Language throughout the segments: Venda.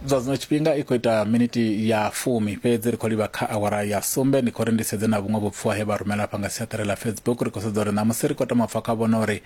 zwa zwino tshifhinga i khou ita miniti ya fumi fhedzi ri khou livha kha awara ya sumbe ndi khou ri ndi sedze na vhuṅwe vhupfuwa he vha rumela afha nga siaṱari ḽa facebook ri khou sedza uri ṋamusi ri khou tama pfa kha vhona uri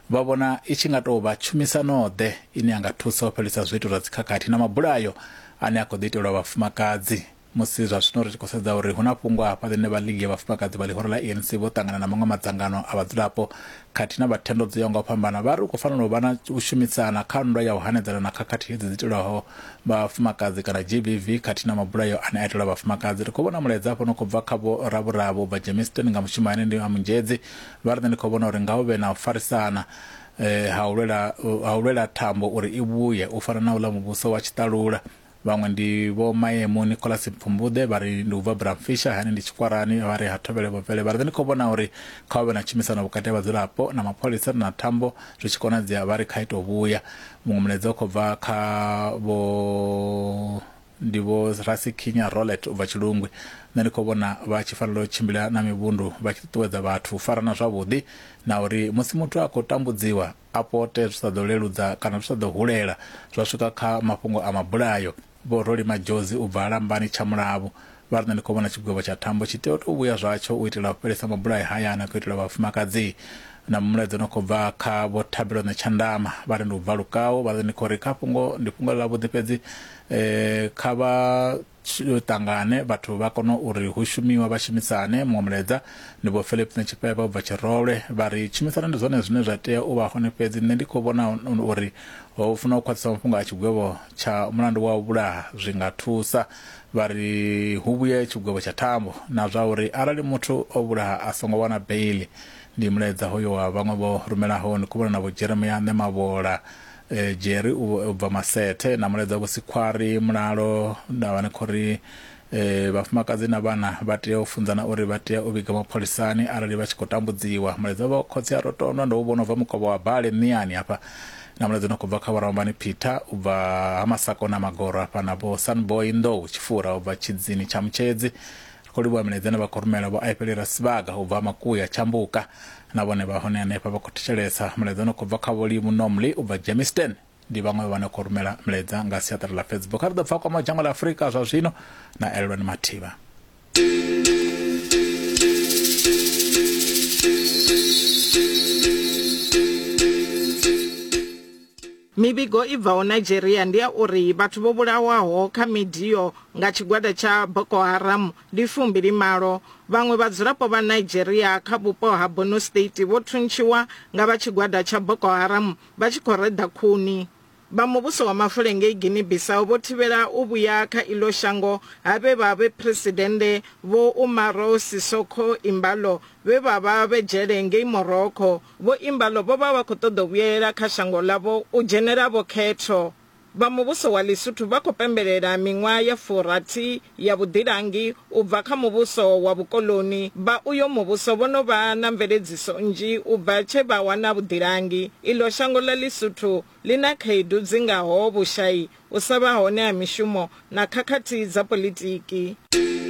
vha vhona i tshi nga tou vha tshumisano-ḓe ine ya nga thusa u fhelisa zwiito zwa dzikhakhathi na mabulayo ane a khou ḓi itelwa vhafumakadzi Musi zwa zwino ri tshi khou sedza uri hu na fhungo hafha ḽine vhalili ya vhafumakadzi vha ḽihoro ḽa ANC vho ṱangana na maṅwe madzangano a vhadzulapo khathihi na vha thendo dzo yaho nga u fhambana, vha ri hu khou fanela u vha na u shumisana kha nndwa ya u hanedzana na khakhathi hedzi dzi itelwaho vhafumakadzi kana GBV khathihi na mabulayo ane a itelwa vhafumakadzi. Ri khou vhona mulaedza hafha u no khou bva kha Vho Ravhuravhu, Vha Germiston nga mushumo ane ndi a Munzhedzi, vha ri nṋe ndi khou vhona uri nga hu vhe na u farisana ha u lwela ha u lwela thambo uri i vhuye, u fana na uḽa muvhuso wa tshiṱalula. Vhaṅwe ndi vho Maemu Nicholas Pfumbuḓe vha ri ndi u bva Bramfisher hani ndi Tshikwarani vha ri ha Thovhele vho Vele vha ri ndi khou vhona uri kha hu vhe na tshumisano vhukati ha vhadzulapo na mapholisa na thambo zwi tshi konadzea vha ri kha ito vhuya muṅwe mulaedza u khou bva kha vho ndi vho Rasikhinya Rolet u bva Tshilungwi nṋe ndi khou vhona vha tshi fanela u tshimbila na mivhundu vha tshi ṱuṱuwedza vhathu u farana zwavhuḓi na uri musi muthu a khou tambudziwa a pote zwi sa ḓo leludza kana zwi sa ḓo hulela zwa swika kha mafhungo a mabulayo. Vho Roli Madjozi u bva Lambani Tshamulavhu vha ri, Nṋe ndi khou vhona tshigwevho tsha thambo tshi tea u tou vhuya zwatsho u itela u fhelisa mabulayo haya ane a khou itelwa vhafumakadzi. Na mulaedza no khou bva kha Vho Thabelone Tshandama vha ri, Ndi u bva Lukau vha ri, Ndi khou ri kha fhungo ndi fhungo ḽavhuḓi fhedzi kha vha tshi ṱangane vhathu vha kone uri hu shumiwe vha shumisane muṅwe mulaedza ndi vho philip netshipeba u bva tshirolwe vha ri tshumisano ndi zwone zwine zwa tea u vha hone fhedzi nṋe ndi khou vhona uri ho funa u khwaṱhisa mafhungo a tshigwevho tsha mulandu wa u vhulaha zwi nga thusa vha ri hu vhuye tshigwevho tsha thambo na zwa uri arali muthu o vhulaha a songo wana beili ndi mulaedza hoyo wa vhaṅwe vho rumelaho ndi khou vhona na vho jeremia ṋemavhola Jerry u bva Masethe na mulaedza Vho Sikhwari mulalo nda vha ni khou ri vhafumakadzi na vhana vha tea u funzana uri vha tea u vhiga mapholisani arali vha tshi khou tambudziwa. Mulaedza Vho Khotsi a Rotondwa ndo u vhona u bva Mukovha wa Bale Miani hafha na mulaedza no khou bva kha Vho Ramambani Peter u bva ha Masakona Magoro hafha na Vho Sunboy Nḓou Tshifura u bva Tshidzini Tshamutshedzi. Ri khou livhuwa milaedza ine vha khou rumela Vho Aipeli Rasibaga u bva ha Makuya Tshambuka Na vhone vha hone henefha vha khou thetshelesa. Mulaedza une u khou bva kha Vho Lee Munomli u bva Germiston. Ndi vhaṅwe vhe vha no khou rumela milaedza nga siaṱari ḽa Facebook. Kha ri ḓo pfa a kwamaho dzhango ḽa Afurika zwa zwino na Elelwani Mathiba. Mivhigo i bvaho Nigeria ndi ya uri vhathu vho vhulawaho kha midio nga tshigwada tsha Boko Haram ndi fumbili malo. Vhaṅwe vhadzulapo vha Nigeria kha vhupo ha Borno State vho thuntshiwa nga vha tshigwada tsha Boko Haram vha tshi khou reḓa khuni. Vha muvhuso wa mafule ngei Guinea-Bissau vho thivhela u vhuya kha iḽo shango ha vhe vha vhe phresidennde Vho Umaro Sissoco Embaló vhe vha vha vhe dzhele ngei Morocco. Vho Imbalo vho vha vha khou ṱoḓa u vhuyelela kha shango ḽavho u dzhenela vho khetho. Vha muvhuso wa Ḽisuthu vha khou pembelela miṅwaha ya furathi ya vhuḓilangi u bva kha muvhuso wa vhukoḽoni. Vha uyo muvhuso vho no vha na mveledziso nnzhi u bva tshe vha wana vhuḓilangi. Iḽo shango ḽa Ḽisuthu ḽi na khaedu dzi ngaho vhushai, u sa vha hone ha mishumo na khakhathi dza politiki.